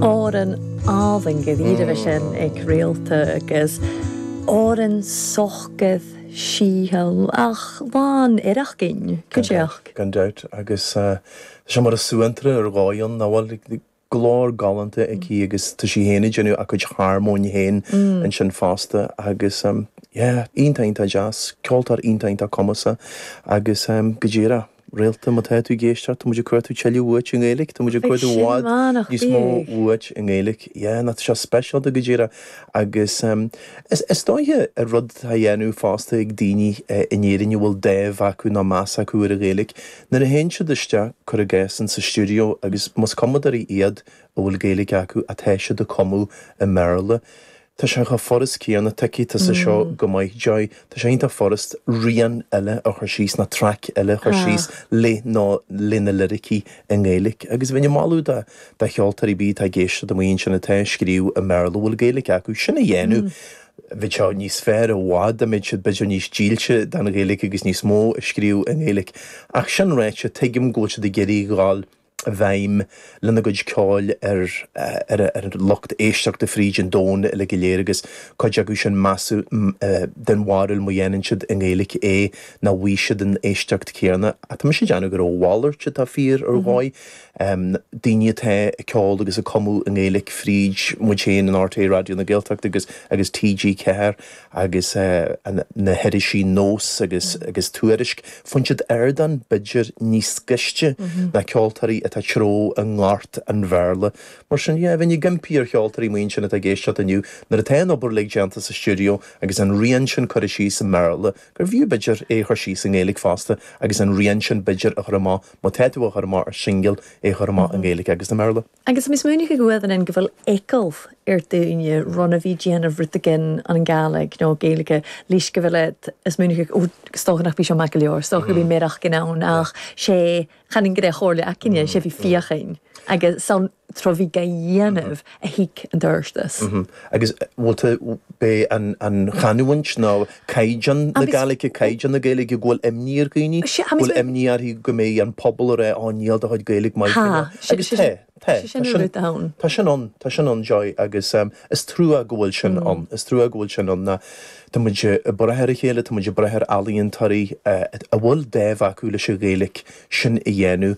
Amhrán álainn go dtí raibh sé ag Réalta agus amhrán socair síthiúil ach lán oidhreacht againn. Go díreach. Gan dabht, agus tá sé mar suantraí ar dhóigh ann, nach bhfuil? Glór galánta aici agus tá sí féin ag déanamh a cuid harmóin féin ansin fosta agus, yeah, iontach, iontach deas. Ceoltóir iontach, iontach cumasach agus, go díreach. Réalta, má tá tú ag éisteacht, tá muid ag cuartú tuilleadh uait i nGaeilge, tá muid ag cuartú i bhfad níos mó uait i nGaeilge. Yeah, ná tá seo speisialta go díreach agus is dóiche rud atá á dhéanamh fosta ag daoine in Éirinn a bhfuil dáimh acu nó meas acu ar an Ghaeilge nuair a théann siad isteach, cuir i gcás, insa stiúideo agus más cumadóirí iad a bhfuil Gaeilge acu, atá siad ag cumadh i mBéarla. Tá sé chomh furast céanna tuigfidh tusa seo go maith, Joy. Tá sé iontach furast rian eile a chur síos, nó traic eile a chur síos le nó le na liricí i nGaeilic. Agus bheinn ag moladh do do cheoltóirí ar bith atá ag éisteacht amuigh ansin atá ag scríobh i mBéarla, a bhfuil Gaeilic acu, sin a dhéanamh. Bheadh sé níos fearr i bhfad dá mbeadh siad b'fhéidir níos dílse don Ghaeilic agus níos mó ag scríobh i nGaeilic. Ach sin ráite, tuigim go bhfuil siad ag iarraidh a dhul i bhfeidhm lena gcuid ceoil ar an lucht éisteachta fríd an domhan uilig go léir agus cuid acu sin measaim den bharúil má dhéanann siad i nGaeilge é nach bhfaighidh siad an éisteacht chéanna. Tá mise ag déanamh gur a mhalairt atá fíor ar dhóigh, daoine atá ag ceol agus ag cumadh i nGaeilge fríd muid féin in RTÉ Raidió na Gaeltachta agus TG4 agus na hirisí Nós agus agus Tuairisc, faigheann siad ardán b'fhéidir níos gaiste ná ceoltóirí atá ag treabhadh i ngort an Bhéarla. Mar sin, yeah, bheinn ag impí ar cheoltóirí amuigh ansin atá ag éisteacht inniu, nuair atá an obair uilig déanta sa stiúideo agus an rian sin curtha síos i mBéarla, gurbh fhiú b'fhéidir é a chur síos i nGaeilge fosta agus an rian sin b'fhéidir a chur amach, má tá tú á chur amach ar shingil, é a chur amach i nGaeilge agus i mBéarla. Agus mis múineadh ag uamhan an go bhfuil eagal ar daoine run a bhí déanamh rud again an Gàidhlig nó Gaeilge leis go bhfuil ag is múineadh ag ó is dócha nach bhí seo maith go leor is dócha go bhí méadach gin ann ach sé chan in gné Chomhairle aicinne sé bhí fíochain agus san tro bhí ga dhéanamh a thig an turstas. Agus bhfuil tú bé an an chanúint nó caighdeán na agus. Gaeilge, caighdeán na Gaeilge, go bhfuil imní ar dhaoine, go Sea, bhfuil agus. imní orthu go mbeidh an pobal ag rá níl do chuid Gaeilge maith Tá, faoina. sé, Agus sé tá, sin, tá, sé sin tá an sin, rud ann. tá sin ann, tá sin ann, Joy, agus is trua go bhfuil sin Mm. ann, is trua go bhfuil sin ann ná tá muid ag brath ar a chéile, tá muid ag brath ar ealaíontóirí a bhfuil dáimh acu leis an Ghaeilge sin a dhéanamh,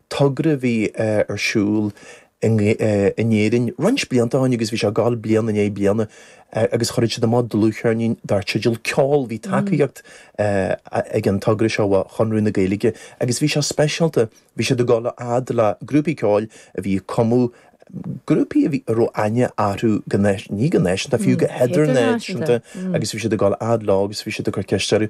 togra a bhí ar siúl in Éirinn roinnt blianta ó shin agus bhí sé ag gabháil bliain i ndiaidh bliana agus chuir siad amach dlúthcheirnín dar teideal Ceol. Bhí tacaíocht ag an togra seo ó Chonradh na Gaeilge agus bhí sé speisialta, bhí siad ag dul a fhad le grúpaí ceoil a bhí ag cumadh, grúpaí a bhí, a raibh aithne orthu go, ní go náisiúnta, fiú go hidirnáisiúnta agus bhí siad ag dul a fhad leo agus bhí siad ag cur ceist orthu.